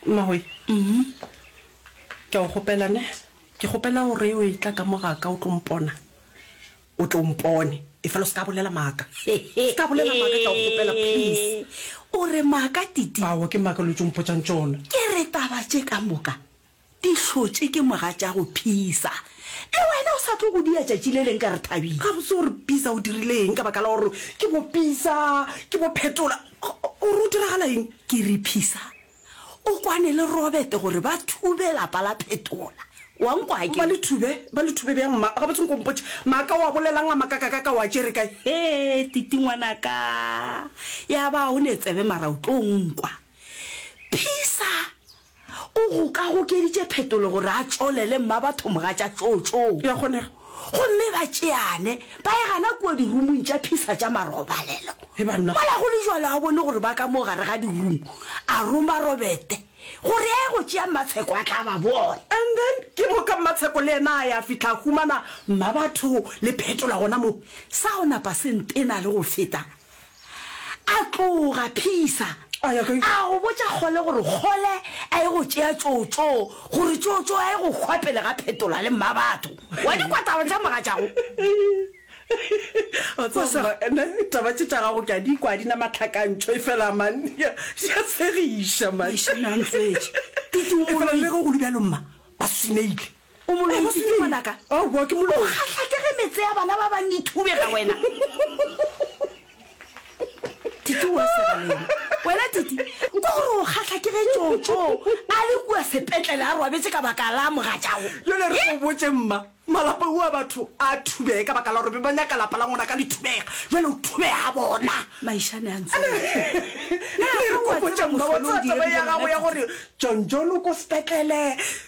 Mmagoe, ke a go kgopela ne, ke kgopela gore o e tla ka mo ga ka o tlo mpona, o tlo mpone efela o se ka bolela maaka, se ka bolela maaka, ke a go kgopela please. O re maaka Titi? Aowa ke maaka lo tšo mpotšang tšona. Ke re taba tše ka moka Di hlotše ke moga tša go phisa. Le wena o sa tlo go dia tšatši le leng ka re Thabile. Gabotse o re Pisa o dirile eng ka baka la gore ke bo Pisa, ke bo Phetola? O re o diragala eng? Ke re Pisa o kwane le Robert gore ba thube lapa la Phetola. Wa nkwa ke? Ba le thube? Ba le thube bjang mma? Gabotse nko mpotše. Maaka o a bolelang a makakakaka o a tšere kae? Hee Titi ngwanaka, ya ba o ne tsebe mara o tlo nkwa. Pisa O gokagokeditše phetolo gore a tšolele mmabatho mogatša tšootšoo. E a kgonega. Gomme ba tšeane, ba e gana kua dirumong tša phisa tša marobalelo. He banna. Mola go le jalo a bone gore ba ka mo gare ga dirumu, a roma Robete gore a ye go tšea Mmatsheko a tla ba bona. And then ke moka Mmatsheko le yena a ya fihla a humana mmabatho le phetola gona moo. Sa go napa se ntena le go feta A tloga, Phisa, a ya kae? A go botša Kgole gore Kgole a ye go tšea Tšotšo, gore Tšotšo a ye go hwa pele ga Phetola le Mmabatho. Wa di kwa taba tša mogatšago? Wa tseba mma, nna taba tše tša gago ke a di kwa, ga di na matlhakantšho, efela man, di a, di a tshegiša man. Eish, Nantsetše, ke Efela le tumoloi. ge go le bjalo mma, ba swineile. O mo loetše ke eng? Aowa, ke mo loetše. O kgahlake ge metse ya bana ba bang e thubega wena. Titi o a sega le yena. Wena Titi, kwa gore o kgahlake ge Tšotšo a le kua sepetlele a robetše ka baka la mogatšago. Bjale re go botše mma, malapa ua batho a thubege ka baka la gore be ba nyaka lapa la ngwana ka lethubega. Bjale o thubega bona. Maišane a ntse. Re go botše mma, wa tseba taba ya gago ya gore John John o ko sepetlele,